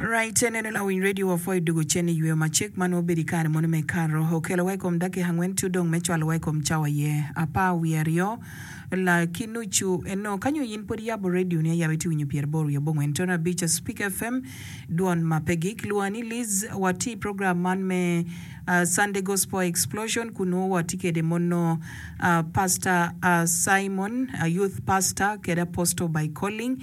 Raa i cen eno lawiny redio wa pwo i dwogo cen i yweyo macek ma nongo obedo i kare mono me Kato. Okelo wa i kom dakika angwen cu dong me cwalo wa i kom cawa aye apar wiye aryo la ki nucu. Eno ka nyo yin pwod iyabo redio ni ayaba iti winyo pyer aboro wiye abongwen tono abic a Speak FM dwon ma pe gik. Lwonga ni Liz. Wa ti i program man me Sunday Gospel Explosion kun nongo wa ti kede mono Pastor Simon, Youth Pastor kede Apostle by Calling.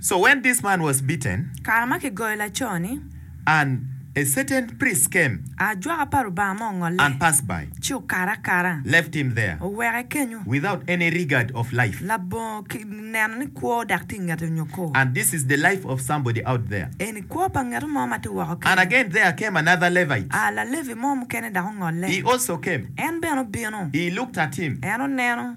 So when this man was beaten. Kare ma kigoyo laco ni. And a certain priest came. Ajwaka pa Rubanga mo ongolle. And passed by. Ci okato akata. Left him there. Oweke kenyo. Without any regard of life. Labongo ki neno ni kwo dok tye ingete nyo ko. And this is the life of somebody out there. Eni kwo pa ngeto mo ma tye woko kenyo. And again there came another Levite. A Lalevi mo mukene dok ongolle. He also came. En bene obino. He looked at him. En oneno.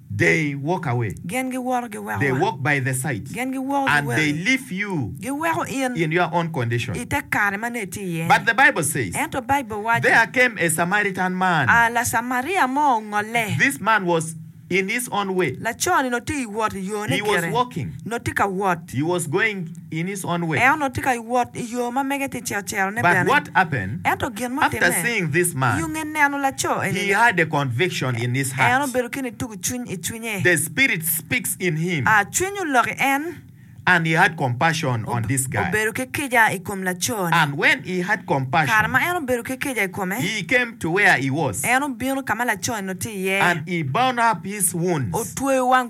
They walk away. Gin giwoto giweko They wa. walk by the sides. Gin giwoko And giweko they i. leave you Giweko in in your own condition. i te kare ma nongo itye iye-ni. But the Bible says, Ento Baibul waco, There came a Samaritan man. A Lacamaria mo ongolle. This man was in his own way. Laco-ni nongo tye i wot i yone He was kite. walking. Nongo tye ka wot. He was going. Eno tye ka wot i yo ma mege ticel ticelone bene. Ento gin mutimme, i onge neno laco eni-ni, en obedo ki nitugo cwiny i cwinye. A Cwiny olok i en, obedo ki kica i kom laco-ni. Kare ma en obedo ki kica i kome, en obino ka ma laco-ni onongo tye iye, otweyo wang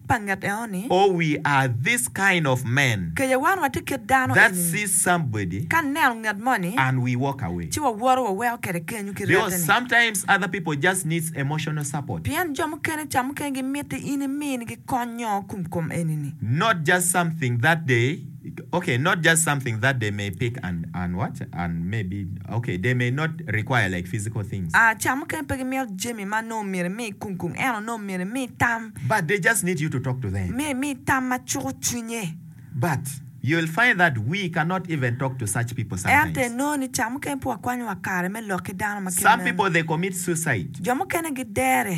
pa nget eno-ni. Oh, we are this kind of men. Kece wan watye kit dano eni. That see somebody. Ka neno nget moni. And we walk away. Ci wawoto waweko kwede kenyo ki rette-ni. Because sometimes other people just needs emotional support. Pien jo mukene ca mukene gimiti in iminigi kony nyo kumkom eni-ni. Not just something that they. ok not just something that they may pick and and what and maybe ok they may not require like physical things. Ah, ca mukene pe gimito jami ma nongo myero imi i kungkung, ento nongo myero imi tam. But they just need you to talk to them. Myero imi tam ma cuko cwinye. But you'll find that we cannot even talk to such people Ento sometimes. inongo ni ca mukene pe wakwanyo wa kare me lok ki dano ma kit Some meno. people they commit suicide. Jo mukene gidere.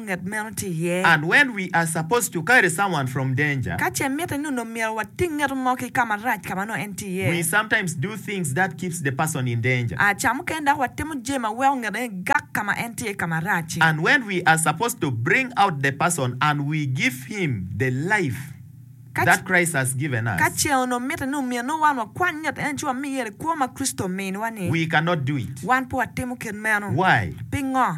nget meno tye iye. And when we are supposed to carry someone from danger. Ka ce mitte ni onongo myero wating ngeto mo ki ka marac ka ma nongo en tye iye. We sometimes do things that keeps the person in danger. A Ca mukene dok watimo jami ma weko ngeto en gak ka ma en tye ka marac-ci. And when we are supposed to bring out the person and we give him the life. Ka ce onongo mitte ni omyero nongo wan wakwany ngat eni ci wamiye ni kwo ma Kricito ominiwa-ni, wan pe watimo kit meno. Pingo?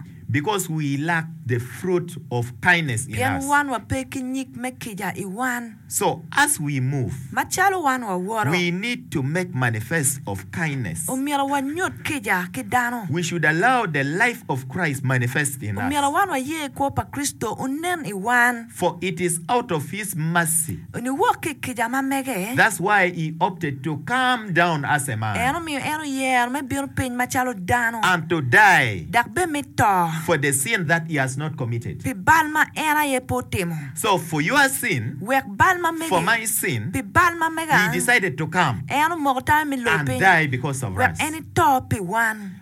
Pien wan wape ki nyig me kica i wan. Macalo wan wawoto, omyero wanyut kica ki dano. Omyero wan waye kwo pa Kricito onen i wan. For it is out of his mercy. Onyo wok ki i kica ma mege. That's why he opted to come down as a man. En omiyo en oyero me bino piny macalo dano. And to die. Dok bed me to. For the sin that he has not committed. Pi bal ma en aye pe otimo. So for your sin. Wek bal ma mege. For my sin. Pi bal ma mega. He decided to come. En omoko tammi me loyo piny. And die because of us. Wek en ito pi wan.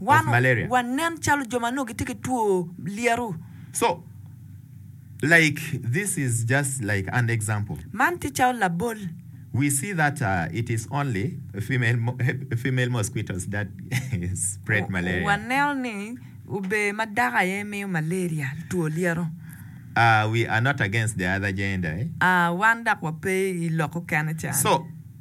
Wan wanen calo jo ma nongo gitye ki two lyeto. Man tye calo labol. Waneno ni obee ma dako aye miyo malaria, two lyeto. Wan dok wape i lok okene can.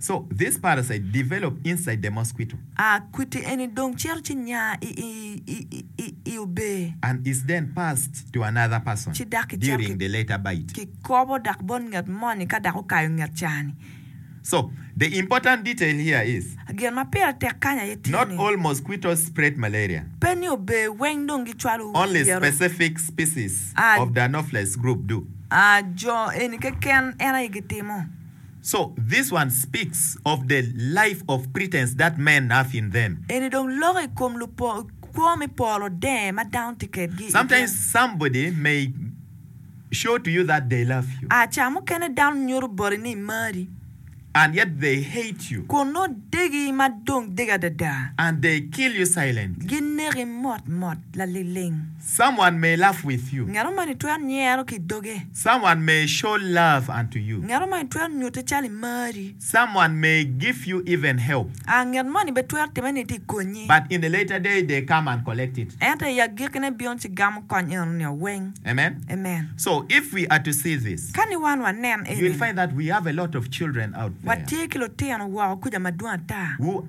So, this parasite develop inside the mosquito. A, kwiti eni dong cito ci nya i, i, i, i, i obee. And is then passed to another person Ci dok kicako during the later bite. kikobo dok bot nget moni ka dok okayo nget caa-ni. So, the important detail here is, Gin ma pire tek kany aye tye not ni, all mosquitoes spread malaria, pe ni obee weng dong gicwalo only yero. specific species A. of the Anopheles group do. A, jo eni keken en aye gitimo. So this one speaks of the life of pretence that men have in them. Eni dong loko i kom kwo me polo denge ma dano tye kedgi i gin. Sometimes somebody may show to you that they love you. A Ca mukene dano nyuto boti ni mari. And yet they hate you. Kun nongo degi ma dong degi adada. And they kill you silently. Gineki motmot, laliling. Someone may laugh with you. Ngat mo moni twero nyero ki i doge. Someone may show love unto you. Nget omoni twero nyutte calo i mari. Someone may give you even help. A Nget moni be twero timme ni tye ka konyi. But in the later day they come and collect it. Ento i agikkine bino ci gamo kony eno nio weng. Amen. Amen. So if we are to see this. Ka ni wan wanen eni. You will find that we have a lot of children out there. Watye ki lutino woko kuca madwong ata. Who.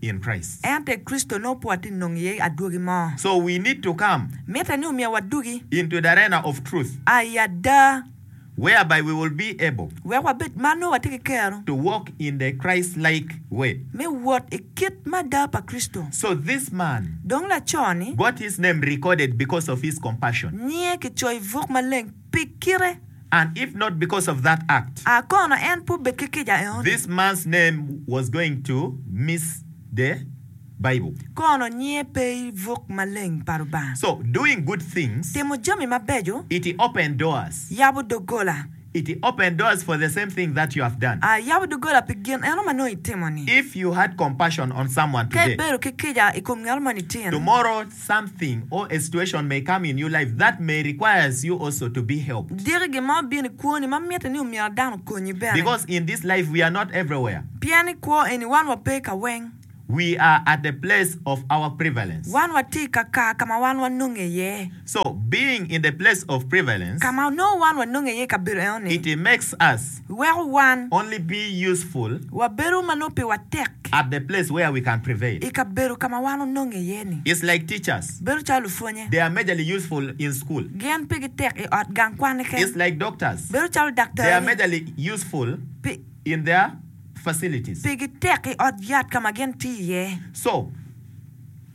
in Christ. Ento i Kricito nongo pe watye nongo iye adwogi mo. So we need to come. Mitte ni omiwa adwogi. Into the arena of truth. A i ada. Whereby we will be able. Wek wabed ma nongo watye ki kero. To walk in the Christ-like way. Me wot i kit me ada pa Kricito. So this man. Dong laco ni. Got his name recorded because of his compassion. Nyinge kicoyo i buk maleng pi kite. And if not because of that act. A kono en pe obed ki kica eno. This man's name was going to miss the Bible. Kono nyinge pe i buk maleng pa Lubanga. So, doing good things. Timo jami mabeco. It open doors. Yabo doggola. It open doors for the same thing that you have done. A yabo doggola pi gin eno ma nongo itimo-ni. If you had compassion on someone today. Ka ibedo ki kica i kom ngat mo nityeni. Tomorrow. something or a situation may come in your life that may requires you also to be helped. Diki gin mo bino i kwoni ma mitte ni omyero dano okonyi bene. Because in this life we are not everywhere. Pien i kwo eni wan wape ka weng. We are at the place of our prevalence. Wan watye i ka kaa ka ma wan wanonge iye. So being in the place of prevalence. Ka ma onongo wan wanonge iye i kabedo eno ni. It makes us. weko wan Only be useful. wabedo ma nongo piwa tek. At the place where we can prevail. I kabedo ka ma wan ononge iye-ni. It's like teachers. Bedo calo lupwonye. They are majorly useful in school. Gin pigi tek i ot gang kwan keken. It's like doctors. Bedo calo daktari. They are majorly useful Pi, in their facilities. pigi tek i ot yat ka ma gin tiyo iye. So,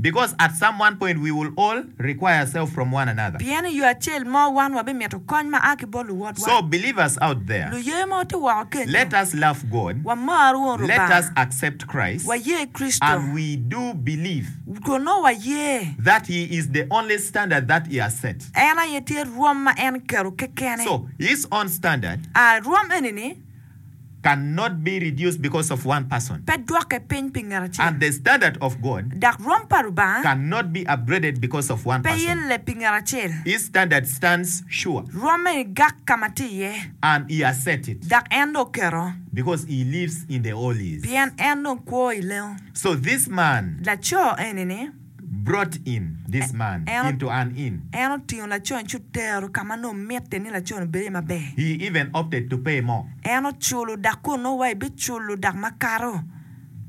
Because at some one point we will all require ourselves from one another. Pien i yo acel mo wan wabimito kony ma a ki bot luwotwa. So believers out there, Luye ma ote woko kenyo, let us love God, wamar won let Lubanga, us accept Christ, waye Kricito, and we do believe kun nongo waye. that He is the only standard that He has set. En aye tye rwom ma en keto kekene. So His own standard. A rwom eni-ni. cannot be reduced because of one person. Pe dwokke piny pi ngat acel. And the standard of God. Dok rwom pa Rubanga. Cannot be upgraded because of one person. Pe yelle pi ngat acel. His standard stands sure. Rwomme ni gak ka ma tye iye. And He has set it. Dok en dong oketo. Because He lives in the Holies. Pien en dong kwo i lengo. So this man. Laco eni-ni. brought in this man into an inn. En otingo laconi ci otero ka ma nongo mitte ni laconi obed iye maber. He even opted to pay more. En oculo dak kun nongo wa ibiculo dak makato.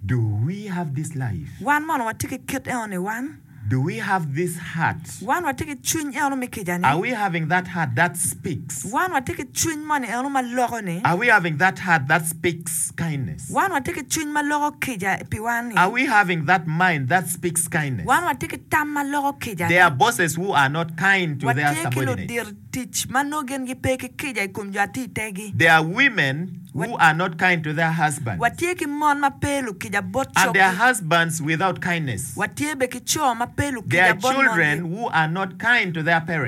Do we have this life? Wan mono watye ki kit enoni wan? Do we have this heart? Wan watye ki cwiny enonu me kica-ni? Are we having that heart that speaks? Wan watye ki cwiny moni enonu ma loko-ni? Are we having that heart that speaks? Wan watye ki cwiny ma loko kica piwa-ni? Wan watye ki tam ma loko kica-ni? Watye ki ludito tic ma nongo gin gipe ki kica i kom jo a tye i tegi? Watye ki mon ma pe lukica bot coggi? Watye bene ki co ma pe lukica bot mongi?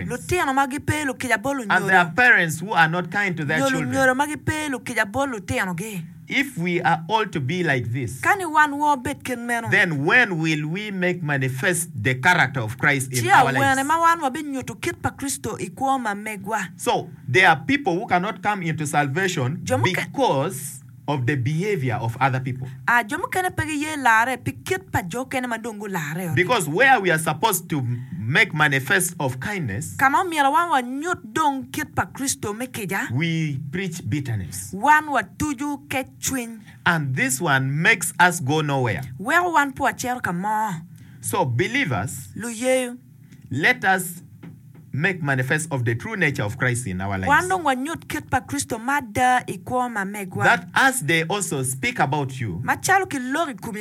Lutino ma gipe lukica bot lunyodo? Nyo lunyodo ma gipe lukica bot lutino? tinogi. If we are all to be like this. Ka ni wan wa obed kit meno. Then when will we make manifest the character of Christ in our lives? Ci awene ma wan wabinyuto kit pa Kricito i kwo ma megwa? So, there are people who cannot come into salvation because of the behavior of other people. A Jo mukene pe giye larre pi kit pa jo okene ma dong gularre-o. Because where we are supposed to make manifest of kindness. Ka ma omyero wan wanyut. dong kit pa Kricito me kica. We preach bitterness. Wan watucu kec cwiny. And this one makes us go nowhere. Weko wan pe wacito ka mo. So believers. Luyeyo. Let us make manifest of the true nature of Christ in our lives. Wan dong wanyut kit pa Kricito me ada i kwo ma megwa. That as they also speak about you. Macalo ki lok i komi.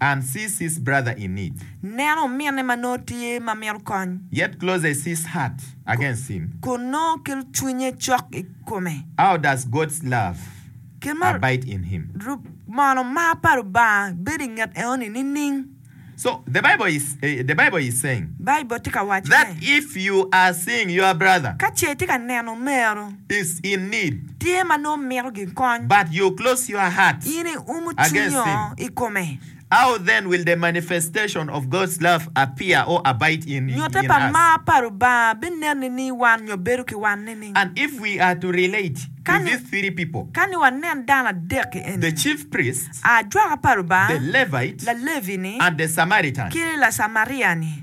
And see sis brother in need. Neno ominne ma nongo tye ma mito kony. Yet close a sis heart against him. Kun nongo kelo cwinye cok i kome. How does God's love Kit ma abide in him? rub mono mar pa Lubanga bedo i nget eno-ni nining? So, the Bible is, the Bible is saying. Baibul tye ka waco That ni. if you are seeing your brother. Ka ce itye ka neno omeru. is in need. Tye ma nongo mito gin kony. But you close your heart. In i umu cwinyo i kome. How then will the manifestation of God's love appear or abide in us? Nyute pa mar pa Rubanga bi nen nining i wan nyo bedo ki wan nining? And if we are to relate to these three people. Ka ni wanen dano adek ki eni. The chief priest. Ajwaka pa Rubanga. The Levite. Lalevi ni. And the Samaritan. Ki Lacamaria ni.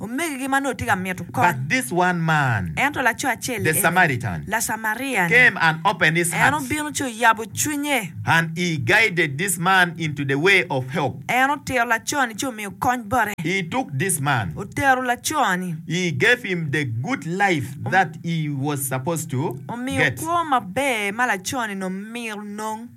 Omegigi ma nongo tye ka mito kony. But this one man, Ento laco acel the eni, Samaritan, Lacamaria-ni, came and opened his en heart, obino ci oyabo cwinye. and he guided this man into the way of help. En otito laco-ni ci omiyo kony bote. He took this man, Otero laco-ni, he gave him the good life that he was supposed to omiyo get. kwo maber ma laco-ni nongo mito nong.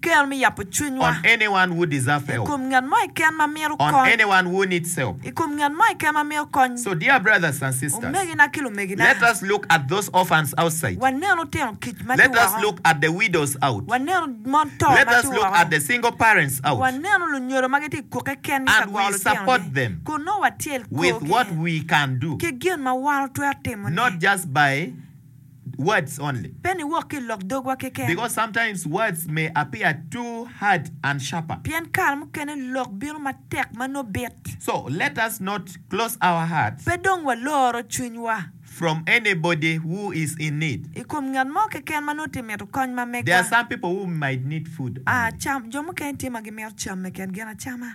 Kel me yabo cwinywa i kom ngat mo keken ma mito kony. I kom ngat mo keken ma mito kony. Omegina ki lumegina, wanen lutino kic ma tye woko, wanen mon to ma tye woko, wanen lunyodo ma gitye ka gukke kekengi ka gwoko lutinogi, kun nongo watyel korgi ki gin ma wan watwero timone. words only. Pe niwok ki i lok dogwa keken. Because sometimes words may appear too hard and sharper. Pien kare mukene lok bino matek ma nongo bit. So let us not close our hearts. Pe dong waloro cwinywa. From anybody who is in need. I kom ngat mo keken ma nongo tye mito kony ma megwa. There are some people who might need food only. Jo mukene tye ma gimito cam meken gin acama.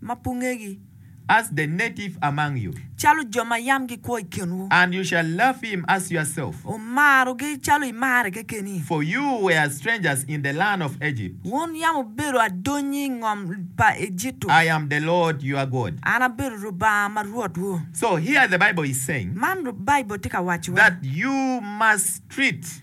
ma pe wungegi. As the native among you. Calo jo ma yam gikwo i kinwu. And you shall love him as yourself. Wumarogi calo imare kekeni. For you were strangers in the land of Egypt. Wun yam wubedo adonyi i ngom pa Ejitto. I am the Lord your God. An abedo Lubanga ma Rwotwu. So here the Bible is saying. Man Baibul tye ka wacowa. That you must treat.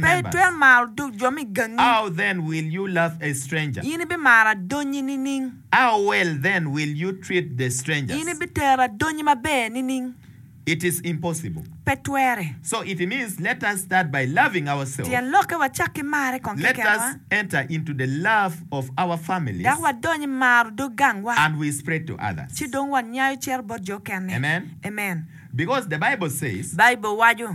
Pe itwero maro duk jo me gangi. In ibimaro adonnyi nining? In ibitero adonnyi maber nining? Pe twere. Tyen lokke, Wacak ki marre kong kekenwa, dok wadony i maro dog gangwa, ci dong wanyayo cito bot jo okene. Amen. Baibul waco.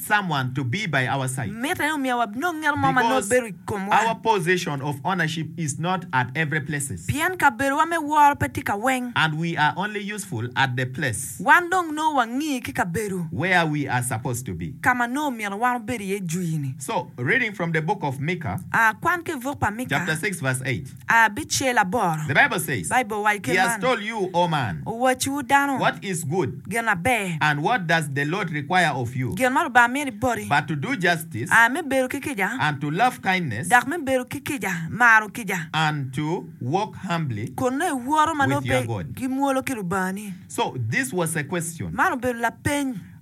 someone to be by our side. Mitte ni omiwa wabinong ngeto mo ma nongo bedo i komwa. Because our possession of ownership is not at every places. Pien kabedowa me woro pe tye ka weng. And we are only useful at the place. Wan dong nongo wangi ki kabedo. Where we are supposed to be. Ka ma nongo omyero wan wabed iye jwi-ni. So, reading from the book of Mika. A, kwan ki i buk pa Mika. Chapter six verse eight. abicel aboro, Baibul owaco kit man, Owacciwu dano gin aber, gin ma Lubanga mito ni boti, aye me bedo ki kica, dok me bedo ki kica, maro kica, kun nongo iwoto ma nongo pe gimwolo ki Lubangani. Man obedo lapeny.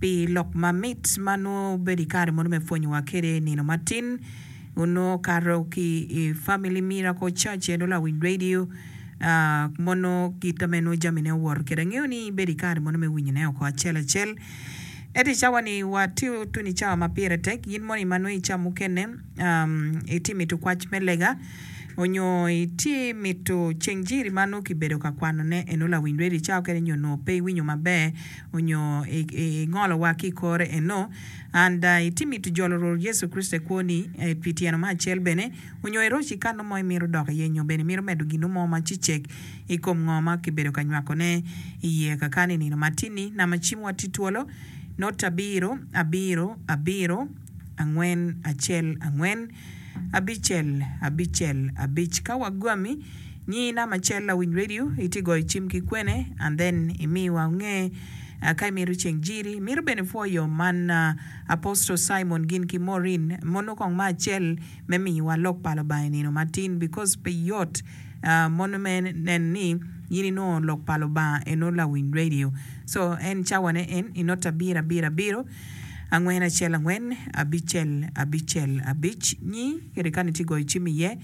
pi lok mamit ma nongo obedo i kare mono me pwonyowa kwede i nino matin. Onongo okato ki i Family Miracle Church ento lawiny radio mono kit ma en nongo jamine owoto kwede. Angeyo ni ibedo i kare mono me winyone oko acel acel. Ento i cawa ni watye tutu ni cawa ma pire tek in moni ma nongo i cawa mukene itye mito kwac me lega onyo itye mito ceng jiri ma nongo kibedo ka kwanone eno lawiny radio cawa mukene onyo nongo pe iwinyo maber, onyo i ngolo wa ki ikore eno and iti mito jolo Rwor Yecu Kricito i kwo ni pi tyeno me acel bene onyo iroc i kano mo imito dok iye nyo bene imito medo gino mo ma cicek i kom ngo ma ki bedo ka nywako ne iye kaka ni nino ma tin ni nama cim wa ti twolo not abiro abiro abiro angwen acel angwen. Abicel abicel abic ka wagwami nyingi namba acel lawiny radio itye goyo cim ki kwene and then imiwa nge ka imito ceng jiri mito bene pwoyo man Apostle Simon gin ki Maureen mono kong me acel me miyowa lok pa Lubanga inino matin because pe yot mono me neno ni in inongo lok pa Lubanga eno lawiny radio so en cawane en inota abiro abiro abiro. Angwen acel angwen, abicel abicel abic, nyi kede kani ci goyo cim iye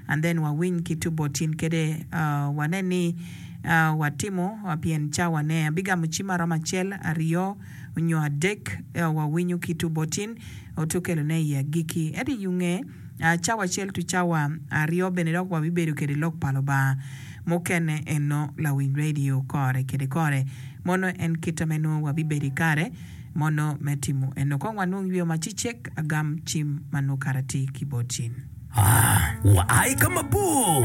and then wa winy ki tubo tin kede wa nen ni wa timo pien cawa ne. Abi gamo cim aromo acel, aryo onyo adek wa winyo ki tubo tin oto kelo ne i agiki. Ento i yunge cawa acel to cawa aryo bene dok wa bi bedo kede lok pa Lubanga mukene eno lawiny radio kore kede kore. Mono en kit ame nwo wa bi bedo i kare mono me timo eno kong wanung yweyo ma ci cek agam cim ma nukara ti ki bot cim. A, wua i ka mabor.